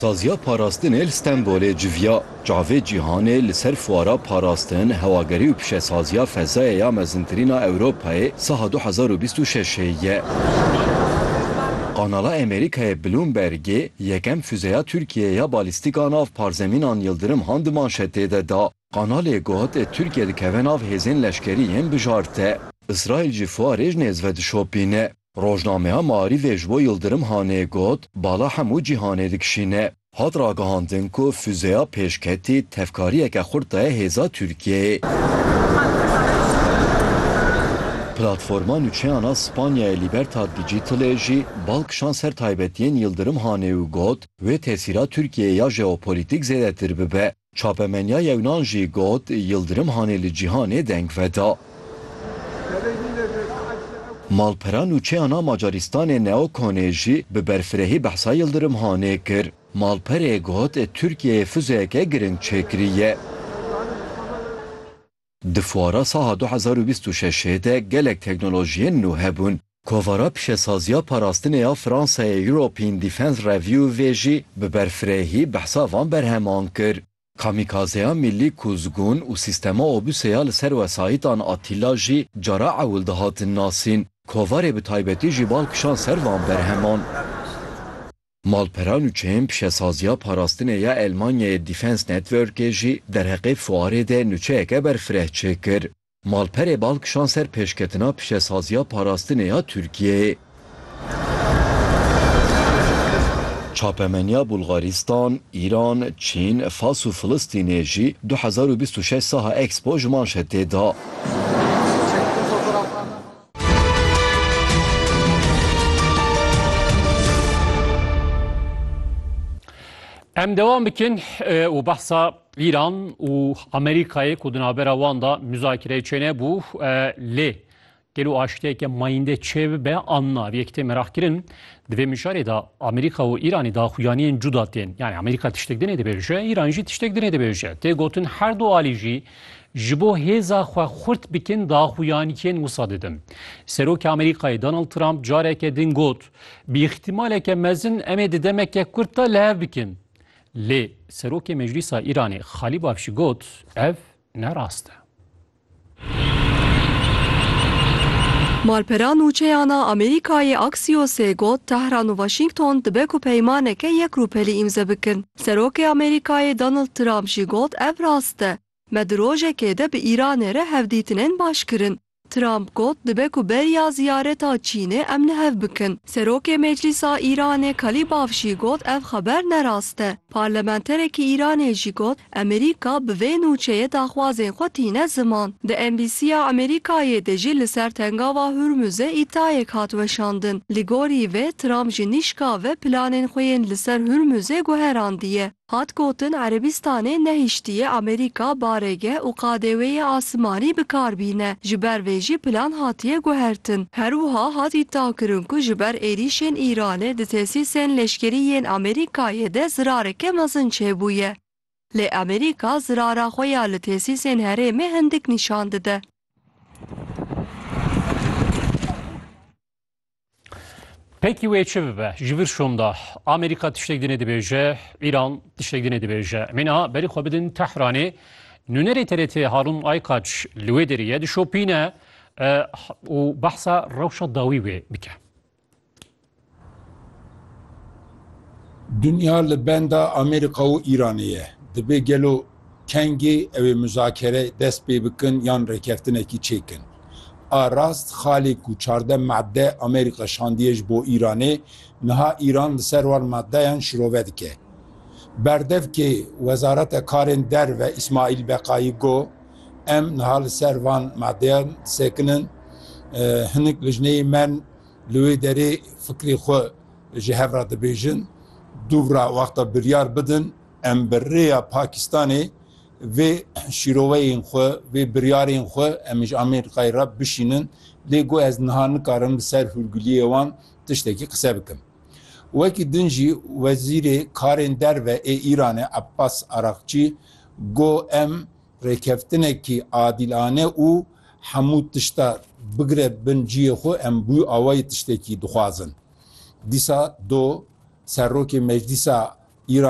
Saziya Parastinê li Stenbolê civiya çavê cîhanê li ser fuara Parastin, Hewagerî û Pişesaziya Fezayê ya Mezintirîn a Ewropayê saha du hezar û bîst û şeş ê ye. Kanala Amerîkayê Bloombergê yekem fuzeya Tirkiyeyê ya balîstîk a nav parzemînan Yildirim Han di manşetê de da. Kanalê got Tirkiye dikeve nav hêzên leşkerî yên bijarte. Îsraîl jî fuarê ji nêz ve dişopîne. Rojnameya Maarîfê ji bo Yildirim Hanê got, Bala hemû cîhanê dikişîne. Hat ragihandin ku fûzeya pêşketî tevkariyeke xurt daye hêza Tirkiyeyê. Platforma nûçeyan a Spanyayê Libertad Digitalê jî bal kişand ser taybetiyên Yildirim Hanê û got, Wê tesîra Tirkiyeyê ya jeopolîtîk zêdetir bibe. Çapemeniya Yewnan jî got, Yildirim Hanê li cîhanê deng veda. Malpera nûçeyan a Macarîstanê Neo Konê jî bi berfirehî behsa Yildirim Hanê kir. Malperê got, Tirkiyeyê fuzeyeke giring çêkiriye. Di fuara saha du hezar û bîst û şeşê de gelek teknolojiyên nû hebûn. Kovara pişesaziya parastinê ya Fransayê European Defence Review vê jî bi berfirehî behsa van berheman kir. Kamîkazeya mîllî Kuzgun û sîstema Obuse ya li ser wesayîtan Atîla jî cara ewil dihatin nasîn. Kovarê bi taybetî jî bal kişand ser van berheman. Malperan û çeyên pişesaziya parastinê ya Elmanyayê Defence Networkê jî derheqê fuarê de nûçeyeke berfireh çêkir. Malperê bal kişand ser pêşketina pişesaziya parastinê ya Tirkiyeyê. Çapemeniya Bulgaristan, Îran, Çîn, Fas û Filistînê jî du hezar û bîst û şeş saha Expo ji manşetê da. Em devam bikin û behsa Îran û Amerîkayê ku di navbera wan da muzakireyê çêne bû lê gelo aştiyeke mayîndê çê bibe an na vê yekitê meraq kirin di vê mijarê da Amerîka û Îranê da xuyaniyên cuda tên yani Amerîka tiştek dinê dibêje Îran jî tiştek dinê dibêje tê gotin her du alî jî Ji bo hêza xwe xurt bikin daxuyan yên wisa didin. Serokê Amerîkayê Donald Trump careke din got, Bi îxtîmaleke mezin em ê di demeke kurt de li hev bikin. Lê Serokê Meclîsa Îranê Xalî Bafşî got, Ev ne rast e. Malpera Nûçeyana Amerîkayê Axios-ê got, Tehran û Washington dibe ku peymaneke yek rûpelî îmze bikin. Serokê Amerîkayê Donald Trump jî got ev rast e, me di rojekê de bi Îranê re hevdîtinên baş kirin. Trump got dibe ku beriya ziyareta Çînê em li hev bikin. Serokê Meclîsa Îranê Kalîbaf jî got ev xeber ne rast e. Parlamenterekî Îranê jî got Amerîka bi vê nûçeyê daxwazên xwe tîne ziman. Di embîsiya Amerîkayê de jî li ser Tengava Hurmuzê îdayek hat weşandin. Li gorî vê Trump ji nîşka ve planên xwe yên li ser Hurmuzê guherandiye. Hat gotin Erebîstanê nehiştiye Amerîka barêgeh û qadewêyê asimanî bi kar bîne, ji ber vê jî plan hatiye guhertin. Her wiha hat îdiakirin ku ji ber êrîşên Îranê di tesîsên leşkerî yên Amerîkayê de zirareke mezin çêbûye. Lê Amerîka zirara xwe ya li tesîsên herêmê hindik nîşan dide. Peki wê çi bibe? Ji vir şonda Amerîka tiştek dinê dibêje, Îran tiştek dinê dibêje. Em ê niha berî xwe bidin Tehranê. Nûnerê TRT Harun Aykaç li wê derê ye dişopîne û behsa rewşa dawî wê bike. Dinya li benda Amerîka û Îranê ye. Dibê gelo Kengê ew ê muzakere dest pê bikin yan rêkeftinekî çêkin. A rast xalê ku çardeh madde Amerîka şandiye ji bo Îranê, niha Îran li ser wan maddeyan şirove dike. Berdevkê Wezareta Karên Derve Îsmaîl Beqayî got, Em niha li ser van maddeyan disekinin. Hinek lijneyên me li wê derê fikrê xwe ji hev re dibêjin. Dûvra wexta biryar bidin. Em bi rêya Pakistanê vê şîroveyên xwe, vê biryarên xwe em ji Amerîkayê re bişînin lê got ez niha nikarim li ser hûrguliyê wan tiştekî qise bikim. Wekî din jî Wezîrê Karên Derve ê Îranê Abbas Araqçî got em rêkeftinekî adîlane û hemû tişta bigire bin cihê xwe em bû awayî tiştekî dixwazin. Dîsa do Serokê Meclîsa Îranê,